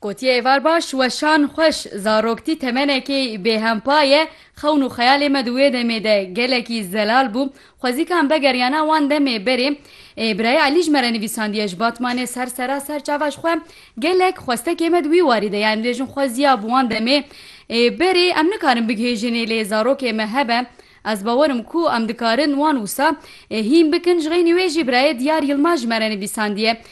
Gotiye êvar baş, weşan xweş, zaroktî temenekê bêhempa ye, xewn û xeyalê me di wê demê de gelekî zelal bû, xwezîkan begeriyana wan demê berê. Birayê Elî ji me re nivîsandiye, Ji Batmanê ser sera ser çava ji xwe gelek xwestekê me di wî warî de ye, em dibêjin xwe ziya bi wan demê berê, em nikarin bigihêjinê lê zarokê me hebe, Ez bawer im ku em dikarin wan wisa hîn bikin ji xeynî wê jî birayê Diyar Yilmaz ji me re nivîsandiye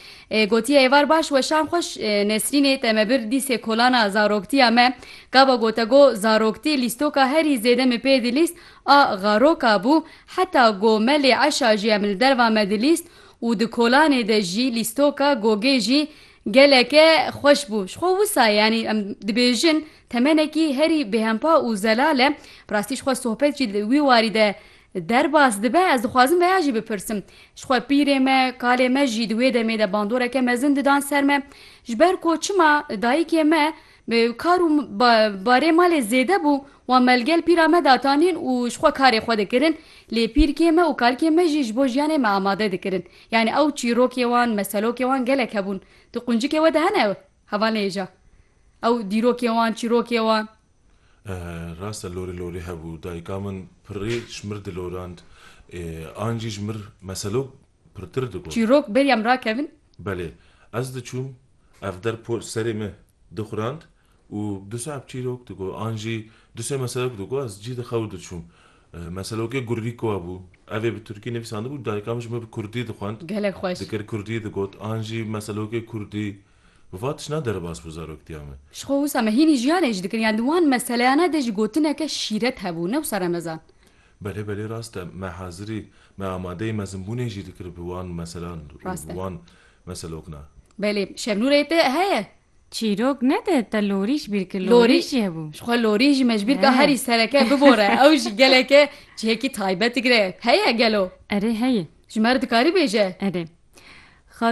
gotiye êvar baş weşan xweş Nesrînê te me bir dîsê kolana zaroktiya me gava gote go zaroktî lîstoka herî zêde min pê dilîst a xaroka bû heta go me lê eşa jî em li derva me dilîst û di kolanê de jî lîstoka gogê jî geleke xweş bû ji xwe wisa yanî em dibêjin Temenekî herî bêhempa û zelal e. Bi rastî ji xwe sohbet jî li wî warî de derbas dibe. Ez dixwazim veya jî bipirsim. Ji xwe pîrê me, kalê me jî di wê demê de bandoreke mezin didan ser me. Ji ber ku çima dayikê me bi kar û barê malê zêde bû, wan me li gel pîra me datanîn û ji xwe karê xwe dikirin. Lê pîrkê me û kalkê me jî ji bo jiyanê me amade dikirin. Yanî ew çîrokê wan, meselokê wan gelek hebûn. Tu quncikê we de hene ew? Heva nêja. Ew dîrokê wan, çîrokê wan. Rast e lorê lorê hebû. Dayika min pirrê ji mir dilorand. An jî ji mir meselo pirtir digot. Çîrok bêriya min rakevin. Belê. Ez diçûm. Ev der por serê me dixurand û du saet çîrok digot. An jî du sê meselek digot. Ez cî dixew diçûm. Meselokê Gurrîkowa bû. Ev ê bi Tirkî nivîsandibû, dayika min ji min bi Kurdî dixwend, Gelek xweş. dikir Kurdî digot, an jî meselokê Kurdî. Bi va tişna derbas bû zaroktiya min. Ji xwe wisa me hînî jiyanê jî dikin, yan di wan meseleyana de jî gotineke şîret hebû, ne wisa remezan. Belê belê rast e. Me hazirî, me amadeyî mezinbûnê jî dikir bi wan meselan û Rast bi e. wan meselokna. Belê, Şevnûrê te heye? Çîrok nede te lorîş bîr ki Lorî lorîş ye bû. ji xwe lorî jî me ji bîr ka He. herî sereke bibore ew jî geleke cihekî taybet digre heye gelo? Erê heye. Ji me re dikarî bêje? Erê. Xa